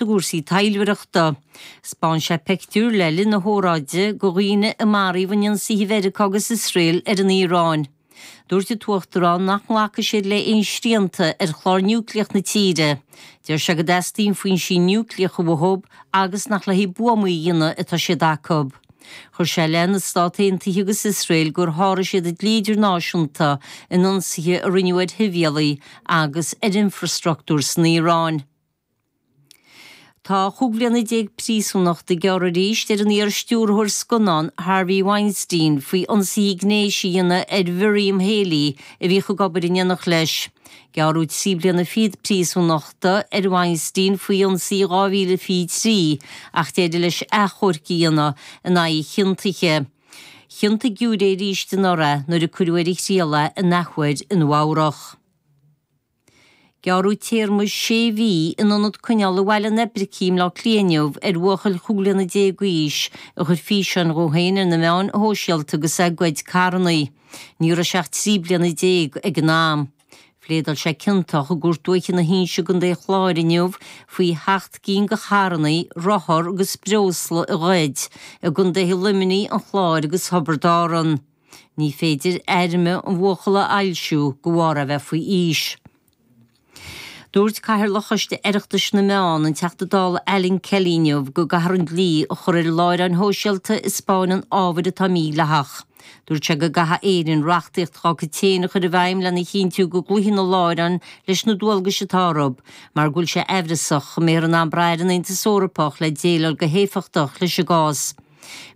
i gcúrsaí taidhleoireachta. 'Spáin sé peictiúir le linn na hóráide de dhaoine a maraíodh in ionsaithe Mheiriceá agus Iosrael ar an Iaráin. Dúirt an tUachtarán nach nglacfaidh siad le haon srianta ar chlár núicléach na tíre. Deir sé go dteastaíonn foinsí núicléacha uathu agus nach le haghaidh buamaí a dhéanamh atá siad acu. Chuir sé i leith na Stát Aontaithe agus Iosrael gur sháraigh siad an dlí idirnáisiúnta in ionsaithe a rinneadh ar shibhialaigh agus ar infreastruchtúr san Iaráin. Tá chúig bhliana déag príosúnachta gearrtha arís ar an iarstiúrthóir scannán Harvey Weinstein faoi ionsaí gnéis a dhéanamh ar Mhiriam Haley a bhíodh ag obair in éineacht leis. Gearradh trí bliana fichead príosúnachta ar Weinstein faoi ionsaí i 2023 ach d'éirigh leis achomharc a dhéanamh in aghaidh a chiontaithe. Chiontaigh giúiré é arís anuraidh nuair a cuireadh ar a thriail é an athuair i Nua-Eabhrac. Gearradh téarma sé mhí in ionad coinneála Bhaile an Oibricigh i mBleá Cliath inniu ar bhuachaill chúig bliana déag d'aois a chuir físeáin dhó féin ar na meáin shóisialta agus é ag goid carrannaí. Ní raibh sé ach trí bliana déag ag an am. Phléadáil sé ciontach i gCúirt Dúiche na hInse i gContae an Chláir inniu faoi sheacht gcinn de charrannaí, rothar agus breosla a ghoid i gContaetha Luimnigh, an Chláir agus Thiobraid Árann. Ní féidir ainm an bhuachalla a fhoilsiú de bharr a bheith faoi aois. Dúirt Cathaoirleach Choiste Oireachtais na Meán, an Teachta Dála Alan Kelly inniu go gcaithfear an dlí a chur ar láithreáin shóisialta a 'spáineann ábhar atá mídhleathach. Dúirt sé go gcaithfidh Éirinn reachtaíocht dhá cuid féin a chur i bhfeidhm lena chinntiú go gcloífidh na láithreáin leis na dualgais atá orthu mar go bhfuil sé aimhreasach go mbeifear in ann brath ar an Aontas Eorpach le déileáil go héifeachtach leis an gcás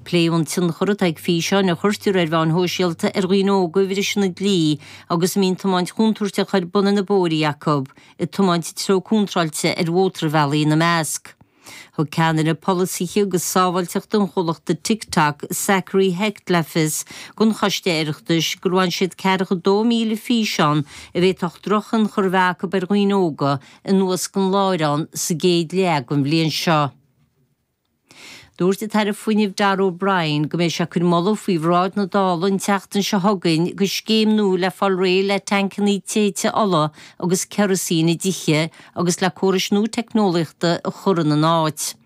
Pléadh an tionchar atá ag físeáin a chuirtear ar mheáin shóisialta ar dhaoine óga a bhriseann an dlí agus a mbíonn tiomáint chontúirteach ar bun ar na bóithrí acu, ag tiomáint i dtreo contráilte ar mhótarbhealaigh ina measc. Thug Ceannaire Polasaithe agus Sábháilteachta an chomhlachta TikTok, Zachary Hecht le fios don Choiste Oireachtais gur bhain siad 42,000 físeán a bhféadfadh drochthionchar a bheith acu ar dhaoine óga anuas den láithreán sa gcéad leath den bhliain seo. Dúirt an tAire Fuinnimh Darragh O'Brien go mbeidh sé ag cur moladh faoi bhráid na Dála an tseachtain seo chugainn do scéim nua le fáil réidh le teainceannaí téite ola agus kerosene i dtithe agus le córais nua teicneolaíochta a chur ina n-áit.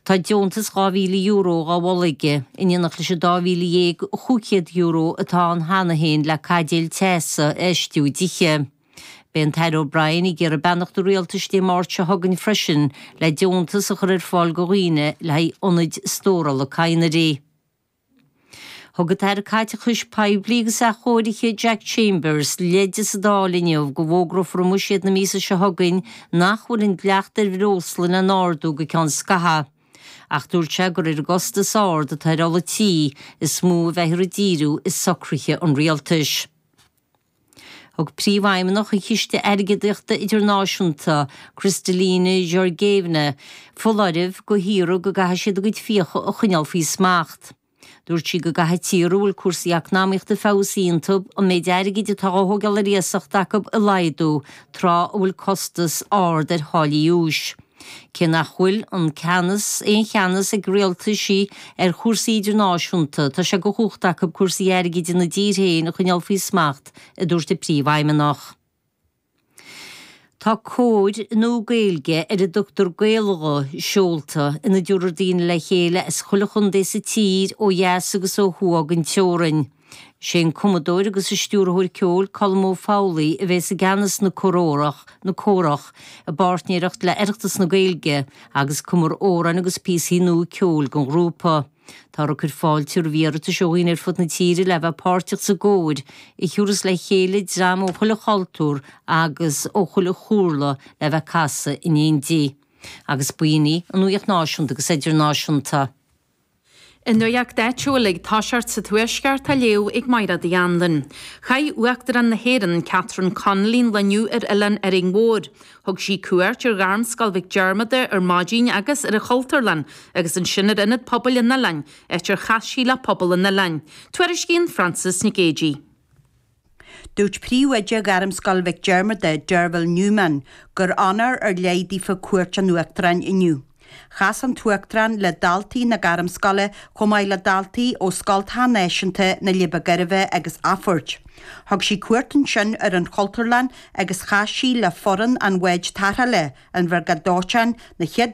Tá deontas €2,000 dhá mholadh aige, in éineacht leis an €12,500 atá ann cheana féin le caidéil teasa a fheistiú i dtithe. Beidh an tAire O'Brien ag iarraidh beannacht an Rialtais Dé Máirt seo chugainn freisin le deontas a chur ar fáil do dhaoine le haghaidh ionaid stórála cadhnraí. Thug an tAire Caiteachais Poiblí agus Athchóirithe, Jack Chambers, leide sa Dáil inniu go bhfógrófar i mbuiséad na míosa seo chugainn nach bhfuil an dleacht ar bhreosla lena n-ardú go ceann scaithea ach dúirt sé gur ar an gcostas ard atá ar ola tí is mó a bheifear ag díriú i socruithe an Rialtais. Thug Príomhfheidhmeannach an Chiste Airgeadaíochta Idirnáisiúnta, Kristalina Georgievna, foláireamh do thíortha go gcaithfidh siad a gcuid fiacha a choinneáil faoi smacht. Dúirt sí go gcaithfidh tíortha a bhfuil cúrsaí eacnamaíochta ag feabhsú iontu an méid airgid atá á thógáil ar iasacht acu a laghdú tráth a bhfuil costas ard ar tháillí úis. Cé nach bhfuil an ceannas, aon cheannas, ag rialtaisí ar chúrsaí idirnáisiúnta, tá sé de chumhacht acu cúrsaí airgid ina dtír féin a choinneál faoi smacht, a dúirt an príomhfheidhmeannach. Tá cór nua Gaeilge, ar a dtugtar Gaelghuth, seolta ina dtabharfar daoine le chéile as chuile chontae sa tír, ó dheas agus ó thuaidh den teorainn. Is é an cumadóir agus an stiúrthóir ceoil Colm Ó Foghlú a bhéas i gceannas na Córórach, na Córach, i bpáirtnéireacht le Oireachtas na Gaeilge, agus cumfar amhráin agus píosaí nua ceoil don ghrúpa. Táthar ag cur fáilte roimh iarratais ó dhaoine ar fud na tíre le bheith páirteach sa gcór, a thabharfas le chéile dream ó chuile chultúr agus ó chuile chúlra le bheith ag casadh in éindí, agus b'in í an nuaíocht Náisiúnta agus Idirnáisiúnta. An nuacht áitiúil ag toiseacht sa Tuaisceart á léamh ag Maighréad Uí Annluain. Chaith Uachtarán na hÉireann, Catherine Connolly an lá inniu ar Oileán Árainn Mhóir. Thug sí cuairt ar Ghairmscoil Mhic Diarmada ar maidin agus ar an Chultúrlann agus ansin ar Ionad Pobail an Oileáin, áit ar chas sí le pobal an oileáin. Tuairiscíonn Frances Nic Géadaigh. Dúirt Príomhoide Ghairmscoil Mhic Diarmada, Derville Newman, gur onóir ar leith daofa cuairt an Uachtaráin inniu. Chas an tUachtarán le daltaí na Gairmscoile chomh maith le daltaí ó Scoilteacha Náisiúnta na Leidhbe Gairbhe agus Athphoirt. Thug sí cuairt ansin ar an Chultúrlann agus chas sí le foireann an Bháid Tarrthála, an Bhriogáid Dóiteáin, na Chéad